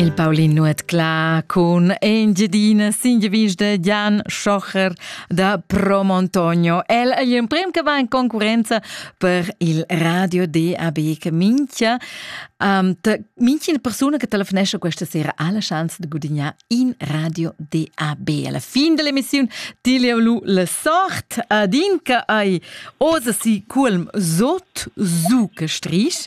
Il Paulin Nuot Cla cun Engiadina Singevisch de Jan Schocher da Promontogno. El è l'emprim che va in concurenza per il radio DAB che minchia um, minchia una persona che telefonesce questa sera ha la chance di guadagnare in radio DAB. Alla fine dell'emissione ti le lu la sorte ad in che hai osa si culm sot su che strich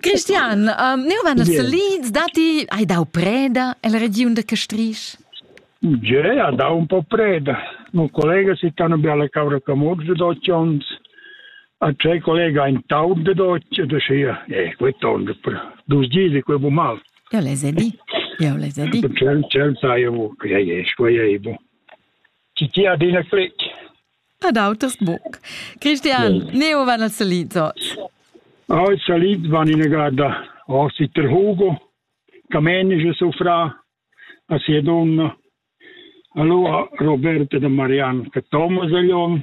Christian, neu van se leads dati hai dau preda el region de Castrisch? Je, ha dau un po preda. Un collega si tan belle cavra camor de doccions. A tre collega in taub de docce de sia, eh, quei tonde, dus gidi quei bu mal. Io les ai dit, io les ai dit. C'è, c'è, sai, che è, quei è, bu. Tgi adina clic? Ad auters buc. Cristian, neu van a Salizots. Oh, in Saliz van in grada. Oh, si ter Hugo, Camenice suo fra, a sia donna. Allora Roberta de Marian, che Thomas Aglion,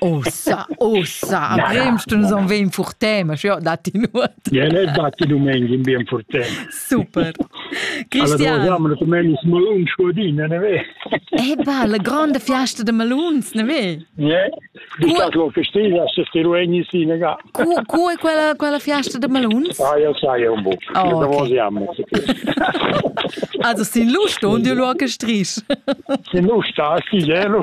Ossa, ossa, a Bremstun son vegn furtem, ja, datti nuot. Ja, ne datti domenig in bien furtem. Super. Christian. Allora, siamo domenig maluns godin, ne ve? Eba, la grande fiesta de maluns, ne ve? Ja, di caso festiva, se ti ruegni sinaga. Cu, cu è quella, quella fiasta da maluns? Ah, io sai un buc. Oh, Also sin lu ston du lu che strich. Sin lu sta sti gelo.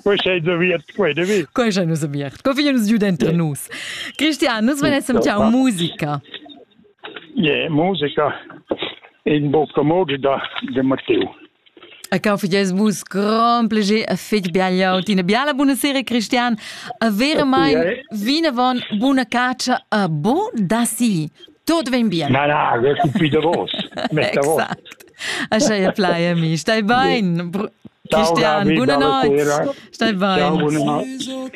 Quei sei da viert quei de vi. Quei sei nus viert. Co figlio nus giu dentro nus. Cristian, nus venessim ciao musica. Je, yeah, musica in bucca mogi da de Matteo. E cau fages vus grand plager e fetg biagliau tina biala buna sera Cristian a verament okay. vinavon buna caccia a bon da si tot vem bien na na io sono qui da vos metta vos Ascha e plai amici stai bain Ciao, Cristian, buona notte. Stai bene. Ciao, buona notte.